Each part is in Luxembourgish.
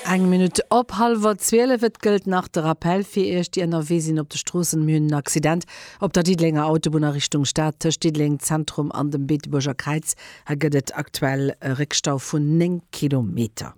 Eng Minutt op hallwer 12. Et gëllt nach de Rappell fir Iech, déi ënnerwee sinn op de Stroossen, Mir hunn en Accident op der Diddelenger Autobunn a Richtung Stad, tëscht Diddeleng Zentrum an dem Beetebuerger Kräiz. Hei gëtt et aktuell e Réckstau vun 9 Kilometer.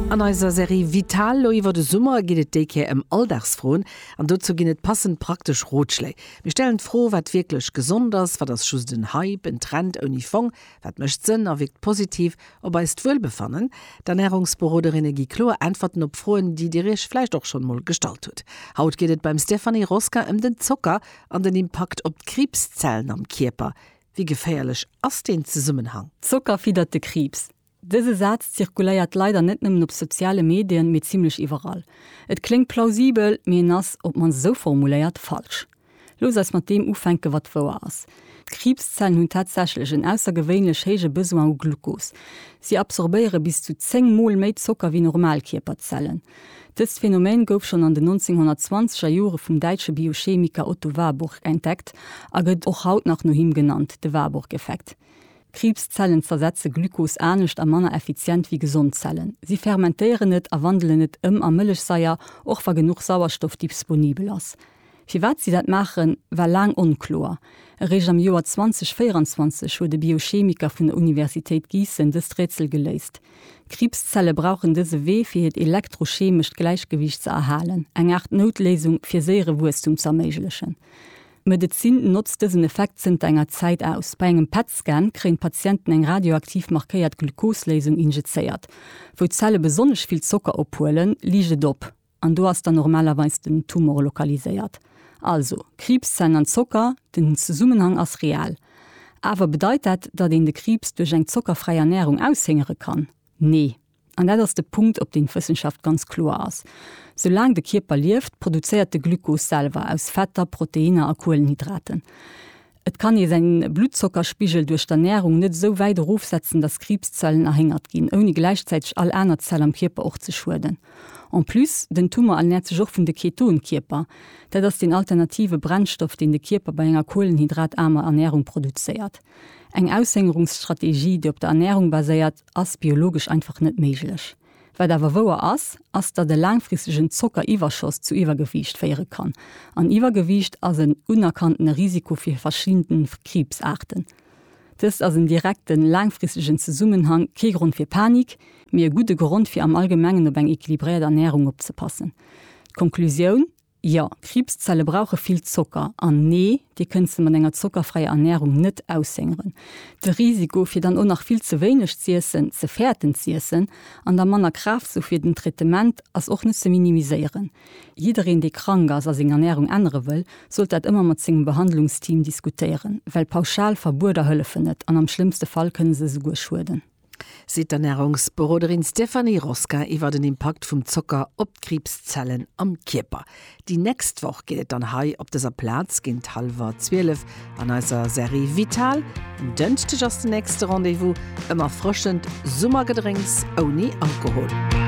An eiser Serie Vital lo iwwer de Summer geet et déi Kéier ëm Alldagsfroen. An dozou ginn et passend praktesch Rotschléi. Mir stellen d'Fro, wat wierklech gesond ass, wat ass just en Hype, en Trend ouni Fong? Wat mécht Sënn a wierkt positiv op eist Wuelbefannen? D'Ernärungsberoderinne gi kloer Äntwerten op Froen, déi Dir Iech vläicht och schonn mol gestallt hutt. Haut geet et beim Stéphanie Rosca ëm den Zocker an den Impakt op d'Kriibszellen am Kierper. Wéi geféierlech ass deen Zesummenhang? Zocker fiddert de Kriibs. Dëse Saz zirkuléiert leider net nëmmen op soziale Medien, mee zimmlech iwwerall. Et kléngt plausibel, mee en ass, op d'mannst esou formuléiert, falsch. Looss eis mat deem ufänken, wat wouer ass, D'Kriibszellen hunn tatsächlech en aussergewéinlech héije Besoin u Glucos. Si absorbéiere bis zu 10 Mol méi Zocker wéi normal Kierperzellen. Dëst Phänomen gouf schonn an den 1920er Jore vum däitsche Biochemiker Otto Warburg entdeckt a gëtt och haut nach no him genannt, de Warburg-Effekt. Kriibszellen zersetze Glucos anescht a manner effizient wéi gesond Zellen. Si fermentéieren et a wandelen et ëm a Mëllechsaier, och wa genuch Sauerstoff disponibel ass. Firwat si dat maachen, war laang onkloer. Eréischt am Joer 2024 huet e Biochemiker vun der Universitéit Giessen dëst Rätsel geléist. Kriibszelle brauchen dëse Wee, fir hiert elektrochemescht Gläichgewiicht ze erhalen, eng Aart Noutléisung, fir séiere Wuesstum ze erméiglechen. D'Medezin notzt dësen Effekt zënter enger Zäit aus. Bei engem PET-Scan kréien d'Patienten eng radioaktiv markéiert Glucose-Léisung injizéiert. Wou d'Zelle besonnesch vill Zocker ophuelen, liicht et op. An do ass dann normalerweis den Tumor lokaliséiert. Also, Kriibszellen an Zocker, den Zesummenhang ass real. Awer bedeit dat, datt een de Kriibs duerch eng zockerfräi Ernärung aushéngere kann? Nee. An dat ass de Punkt, op deen d'Wëssenschaft ganz kloer ass. Soulaang de Kierper lieft, produzéiert de Glukos selwer aus Fetter, Proteinner a Kuelenhydraten. Et kann ee säin Bluttzockerspigel duerch d'Ernährung net esou wäit erofsetzen, dass Kriibszellen erhéngert ginn, ouni gläichzäiteg all aner Zell am Kierper och ze schueden. En plus, den Tumor ernährt sech och vun de Ketonkierper. Dat ass deen alternative Brennstoff, deen de Kierper bei enger kohlenhydrataarmer Ernährung produzéiert. Eng Aushëngerungsstrategie, déi op der Ernährung baséiert, ass biologesch einfach net méiglech. Wat awer wouer ass, ass datt e laangfristegen Zockeriwwerschoss zu Iwwergewiicht féiere kann. An Iwwergewiicht ass en unerkanntene Risiko fir verschidde Kriibsaarten. Dëst ass en direkten, laangfristegen Zesummenhang, kee Grond fir Panik, mee e gudde Grond fir am Allgemengen op eng equilibréiert Ernärung opzepassen. D'Konklusioun, Jo, Kriibszelle brauche vill Zocker. An nee, Dir kënnt se mat enger zockerfräier Ernärung net aushëngeren. De Risiko, fir dann och nach vill ze wéineg z'iessen, ze fäerten z'iessen an da manner Kraaft ze hu fir den Traitement, ass och net ze minimiséieren. Jiddereen, dee krank ass a seng Ernärung ännere wëll, sollt dat ëmmer mat sengem Behandlungsteam diskutéieren, well pauschal Verbueder hëllefen net an am schlëmmste Fall kënne se esouguer schueden. seet d'Ernärungsberoderin Stéphanie Rosquin iwwer den Impakt vum Zocker op d'Kriibszellen am Kierper. Déi nächst Woch geet et dann hei op dëser Plaz géint hallwer 12 an eiser Serie Vital. En Dënschdeg ass den nächste Rendez-vous, ëm erfrëschend Summergedrénks ouni Alkohol.